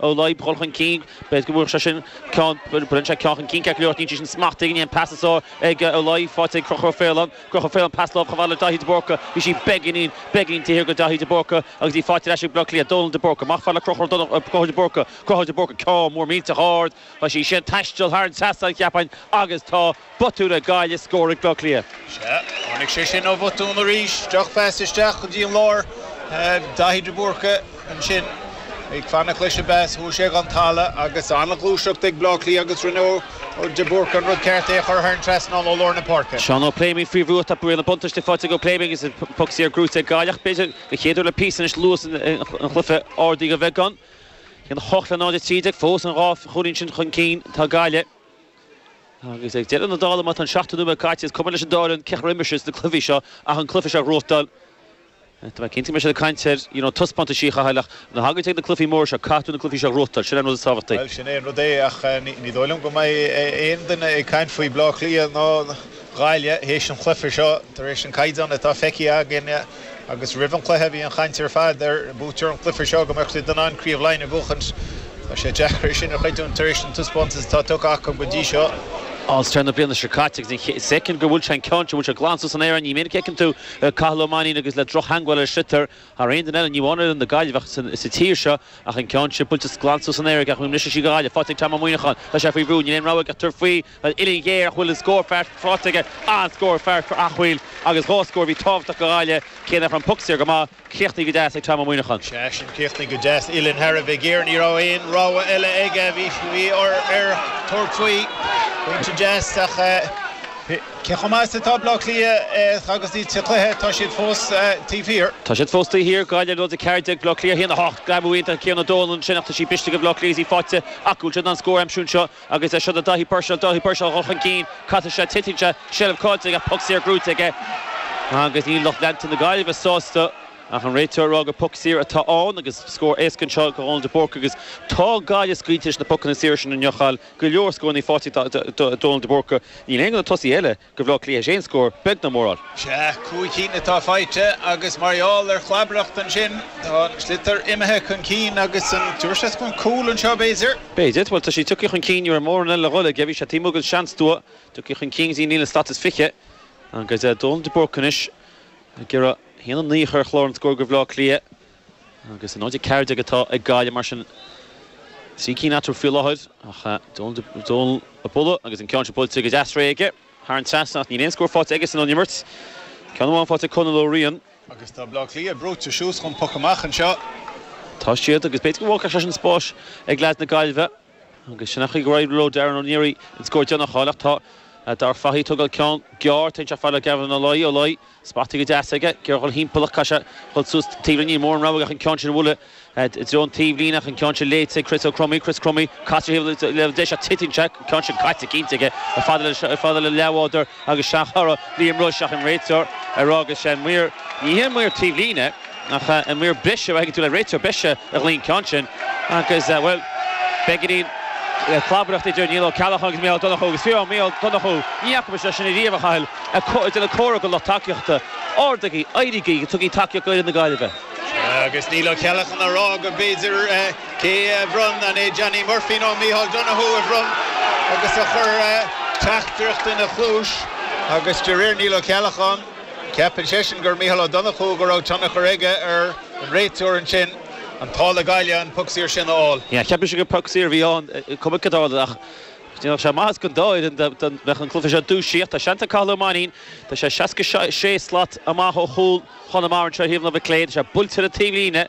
Ó Laoi a dhul chun cinn. B'fhéidir go bhfuair sé sin ceann, baineann sé ceann chun cinn ceart go leor, níl sé sin smacht aige aon pas is sár ag Ó Laoi, faighte ag Conchúr Ó Faoláin, Conchúr Ó Faoláin pas láimhe chomh fada le Dáithí de Búrca, bhí sí beagáinín, beagáinín taobh thiar go Dáithí de Búrca agus í faighte ar ais ag Bleá Cliath, Dónal de Búrca, amach fad le Conchúr Dónal, Conchúr de Búrca, Conchúr de Búrca, ceann mór millteach ard, tá sí sin ag taisteal thar an trasnán cheapfainn agus tá. Botún ag Gaillimh scór ag Bleá Cliath. Sea, tháinig sé sin ó bhotún arís. Drochphas isteach go dtí an lár. Daithí de Búrca ansin ag fanacht leis an bpas. Chuaigh sé ag an talamh agus an-ghluaiseacht ag Bleá Cliath agus rinne de Búrca an rud ceart, é a chur thar an trasnán ó lár na páirce. Seán Ó Pléimionn faoi bhrú. Tá riail an bhuntáiste faighte ag Ó Pléimionn agus an poc saor gnóthaithe ag Gaillimh. B'fhéidir, den chéad uair le píosa anois, luas an chluiche ardaithe de bheagán. 1-8 le 0-13 fós. An dhá chúilín sin chun cinn atá Gaillimh. Agus ag deireadh na dála, má tá an seachtó nóiméad caite, is cuma leis an dá fhoireann cén chaoi ar imir siad sna cluichí seo ach an cluiche seo a ghnóthachtáil. Tá mé cinnte go mbeidh siad ag caint ar, you know, taispeántaisí a chaitheáil ach nuair a thagann sé ag na cluichí móra seo, caithfidh tú na cluichí seo a ghnóthachtáil, sin é an rud is tábhachtaí. Bhuel, sin é an rud é ach ní dóigh liom go mbeidh aon duine ag caint faoi Bleá Cliath ná Gaillimh théis an chluiche seo tar éis an caighdeán atá feicthe againn. Agus roimh an cluiche bhí an chaint ar fad ar buaiteoir an cluife seo go mbeadh siad in ann Craobh Laighin a bhuachaint. Tá sé deacair é sin a chreidiúint tar éis an taispeántas atá tugtha acu go dtí seo. All-Star na bliana seo caite agus feiceann tú go bhfuil sé an ceann seo buailte glan suas san aer. Ní minic a fheiceann tú Cathal Ó Mainín agus le drochtheangmháil ar sliotar thar aon duine eile, ní amháin ar na Gaillmhigh ach sa tír seo ach an ceann sin buailte glan suas san aer. Ceapaim anois is í go Gaillimh. Faighte ag Tom Ó Muíneacháin. Tá sé faoi bhrú. Níl aon rogha aige ach tabhairt faoi. An uillinn géar ach bhfuil an scór cheart faighte aige, an-scór cheart for Acaill agus dhá scór a bhí tábhachtach go Ghaillimh, cé nach raibh an poc saor go maith, críochnaithe go deas ag Tom Ó Muíneacháin. Sea, sin, críochnaithe go deas, uillinn thar a bheith géar, ní raibh aon rogha eile aige, bhí air tabhairt faoi, pointe deas ach cé chomh maith is atá Bleá Cliath agus iad sa chluiche, tá siad fós taobh thiar. Tá siad fós taobh thiar, Gaillimh 0 14 Bleá Cliath 1, 8, greamú iontach ag Cian Ó Dónaill ansin ach tá sí briste ag Bleá Cliath agus í faighte acu, bhfuil siad in ann scór a aimsiú anseo? Agus é seo do Daithí Purcell, Dáithí Purcell a dhul chun cinn, casann sé titeann sé, seilbh caillte aige, poc saor gnóthaithe aige agus níl lucht leanta na Gaillimhe sásta ach an réiteoir a rá gur poc saor atá ann agus scór éasca anseo go Dhónal de Búrca agus tá Gaillimh scaoilte leis na pocanna saora sin a ngiocáil go leor scór inniu faighte ag Dónal de Búrca. Níl aon de na tosaithe eile. Go Bhleá Cliath théis aon scór beag ná mór a fháil. Sea, cúig cinn atá faighte agus mar gheall ar chlabareacht ansin tá an sliotar imithe chun cinn agus an dúirt sé chun cúl anseo b'fhéidir? B'fhéidir. Bhuel tá sí tugtha chun cinn ní raibh mórán eile le dhul aige, bhí sé taobh amuigh den seans dua, tugtha chun cinn go dtí líne an slat is fiche agus Donal de Búrca anois ag iarraidh a haon a naoi a chur ar chlár an scór go Bhleá Cliath Agus 0-14 atá ag Gaillimh mar sin, trí cinn eatarthu faoi láthair ach Donal a bhualadh agus an ceann sin buailte go deas réidh aige thar an trasnán ach níl aon scór faighte aige-san ón imirt. Ceann amháin faighte ag Conall Ó Riain. Agus tá Baile Átha Cliath brúite suas chun poc amach anseo. Tá siad agus b'fhéidir go bhfágfadh sé sin spás ag leaids na Gaillimhe. Agus sin an chaoi go raibh Tiernan Ó Neary in ann scór a dhéanamh thall ach tá Darragh Fahy ag tabhairt ceann gearr taobh istigh a fhad le Gavin Ó Laoi, Ó Laoi, spotáilte go deas aige, ag iarraidh dhul timpeall ach caithfidh sé dhul suas taobhlíne, níl mórán rogha ach an ceann sin a bhualadh i dtreo an taobhlíne ach an ceann sin léite ag Chris Ó Cromaí, Chris Crummy, caite taobh leis ach titeann sé, ceann sin caite cinnte aige, a fhad le leathbhádar. Agus seachadadh Liam Rushe ach an réiteoir ar fhága sé an maor, ní hé an maor taobhlíne ach an maor breise nó b'fhéidir an réiteoir breise a ghlaoigh an ceann sin agus, bhuel, beagáinín clabaireacht idir Niall Ó Ceallacháin agus Mícheál Ó Donnchú agus fiú amháin Mícheál Ó Donnchú, ní fhaca muid é seo ariamh, a Chathail, ag déanamh comhartha do lucht tacaíochta. Ardaigí, éirígí, tugaigí tacaíocht d'fhoireann na Gaillimhe. Agus Niall Ó Ceallacháin ag rá go b'fhéidir. Cé a bhronn? An é Johnny Murphy nó Micheál Donoghue a bhronn agus a chuir teachtaireacht ina chluais? Agus de réir Niall Ó Ceallacháin, ceapann seisean gur Micheál Ó Donnchú, go raibh tionchar aige ar an réiteoir ansin, an t-ádh le Gaillimh an poc saor sin a fháil. Yeah, cheapas gur poc saor a bhí ann, cuma cad a tharla. Ach dhéanfadh sé maitheas don dá fhoireann dá mbeadh an cluiche seo dúisithe. Tá seans ag Cathal Ó Mainín, tá sé 66 slat amach ó chúl Chonamara anseo ar thaobh na Micléinn, tá sé buailte ar an taobhlíne,